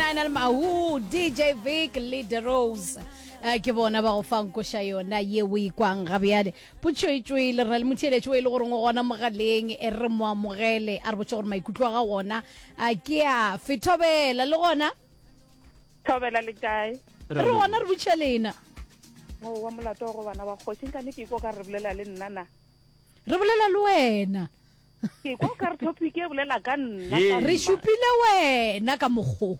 Lionel Mahu, DJ Vic le The Rose Eh, ke bona ba go fang koša yona ye o ikwang ga bjale potšoetšoe le rale motheeletši o e le goreng o gona mogaleng e re mo amogele a re botse gore maikutlo a ga gona a ke a fethobela le gona thobela le kae re gona re butšha lena mo wa molato go bana ba kgoši nka ne ke iko ka re bolela le nna na re bolela le wena Ke kwa ka re topic e bolela ka nna. Ee. Re šupile wena ka mokgo.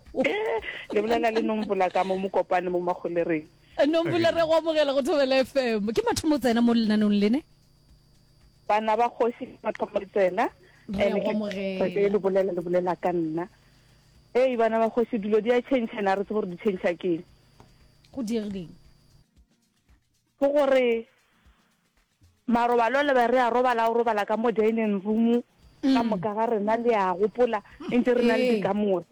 Le bolela le Nombola ka mo Mokopane mo Magolereng. Nombola re go amogela go Thobela FM. Ke mathomo o tsena mo lenanong lene? Bana ba kgoši ke mathomo le tsena. Re a go amogela. Ee le bolela le bolela ka nna. Ee bana ba kgoši dilo di a change and a re tsebe gore di change keng. Go diegileng? Ke gore marobalo le be re a robala o robala ka mo dining room ka moka ga rena le a gopola ntse re na le dikamore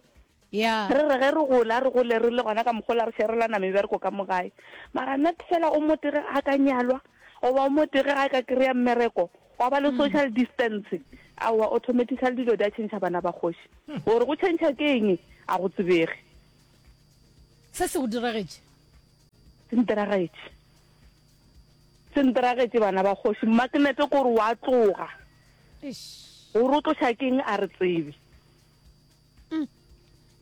Yeah. re re ge re gola re gole re le gona ka mogola re sherelana mebereko ka mogae mara nna fela o motege a ka nyalwa goba o motege a ka kry-a mmereko wa ba le social distance aowa automatically dilo di a change bana ba kgoši gore go change ke eng a go tsebege se se go diragetše senteragetse senteragetse bana ba kgoši magnete kore wa tloga gore o tloša keng a re tsebe mm.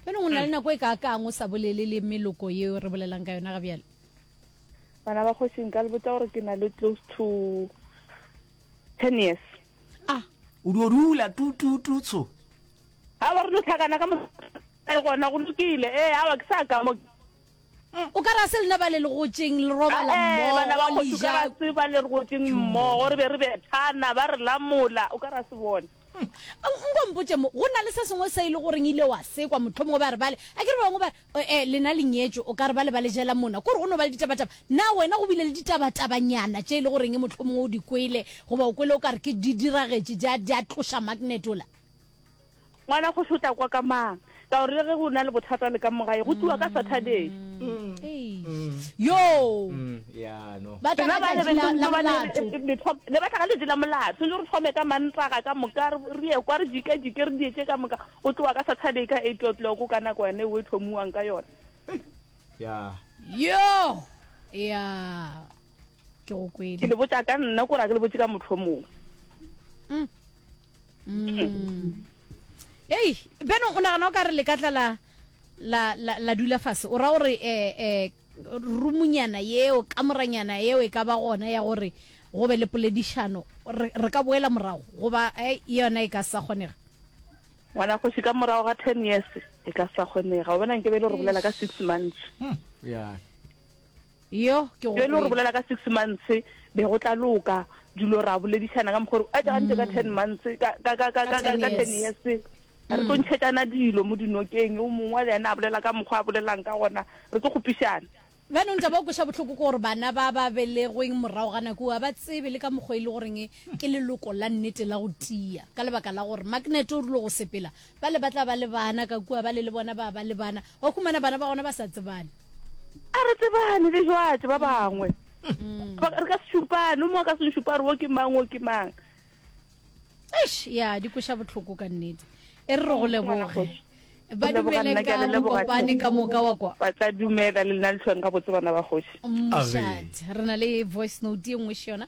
fela go na le nako e ka kang o sa bolele le meloko yeo re bolelang ka yona ga bjale bana ba kgošing ka lebotsa gore ke na le close to ten years ah o di o dula tutututso ga ba re lo tlhakana ka mo gona go lokile ee awa ke sa ka mo O ka re a se lena ba le legotšeng le robala mmogo, le ja. Bana ba kgoši, o ka re a se ba le legotšeng mmogo re be re bethana, ba re lamola, o ka re a se bone. Nko mpotše mo, go na le se sengwe se e le goreng ile wa se kwa, mohlomongwe ba re bale, a ke re ba bangwe ba re, ee, lena le nyetšwe, o ka re bale ba le jela mona, ko re go no ba le ditabataba. Na wena go bile le ditabatabanyana tše e le goreng mohlomongwe o di kwele, goba o kwele o ka re ke di diragetše, di a, di a tloša magnet ola? Ngwana kgoši o tla kwa ka mang? Ka gore le ge go na le bothata le ka mo gae, go tliwa ka Saturday. Rena ba lebe le ba le le batla ga letši la molato le re thome ka mantaga ka moka re ye kwa re dike dike re dietse ka moka o tlowa ka saturday ka eight o'clock ka nako yone o e thomiwang ka yone yo ya ke go kwele ke le botsa ka nna ko ra ke le botse ka motlhomong mm. mm. ei beno o nagana o ka re le ka tla la la la, la dula fase o ra gore eh, eh, rumunyana yeo kamoranyana yeo e ka ba gona ya gore go be le poledišano re re ka boela morago goba eh, yona e ka sa kgonega ngwana kgoši ka morago ga ten years e ka sa kgonega o bona nke be e le gore bolela ka six months ya Yoh, ke go Ge e le gore o kwele. bolela ka six months, be go tla loka. Dilo ra boledišana ka mokgwa o re, a tša gantše ka ten months, ka, ka, ka, ka, Ka ka, ka, 10 ka ten years. years. Re tlo ntšhetšana dilo mo dinokeng, yo mongwe le yena a bolela ka mokgwa a bolelelang ka gona, re tlo kgopišana. Jaanong taba o kweša bohloko ke gore bana ba ba belegweng morago ga nako eo ga ba tsebe le ka mokgwa e le goreng ke leloko la nnete la go tia ka lebaka la gore maknete o rile go sepela Ba le ba tla ba le bana, ka kua ba le le bona ba ba le bana, wa humana bana ba gona ba sa tsebane. A re tsebane le jwatše ba bangwe. Ba- Re ka se šupane, o mongwe a ka se nšupa a re wo ke mang, wo ke mang. Eish, ya di kweša bohloko ka nnete. E re re go leboge. Ba Re leboga dumele nna, ke a ka le leboga. mokopane ka moka wa kwa. Ba tla dumela le nna lehlweng gabotse bana ba kgoši. Moshat. Re na le voice note e nngwe še yona.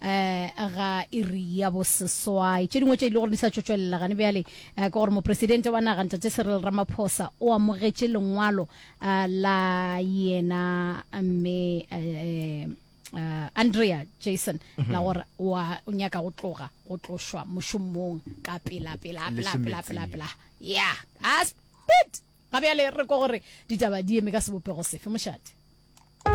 ga iri ya boseswai tše dingwe tše e le gore di sa tšotšwelela gane bjale ke gore mopresidente wa naga ntate serel ramaphosa o amogetše lengwalo la yena mme uh, andrea jason mm -hmm. la gore wa o nyaka go tloga go tlošwa mošomong ka pela pela pela pela pela pela ya a spit ga bjale re ko gore ditaba di eme ka sebopego sefe mošate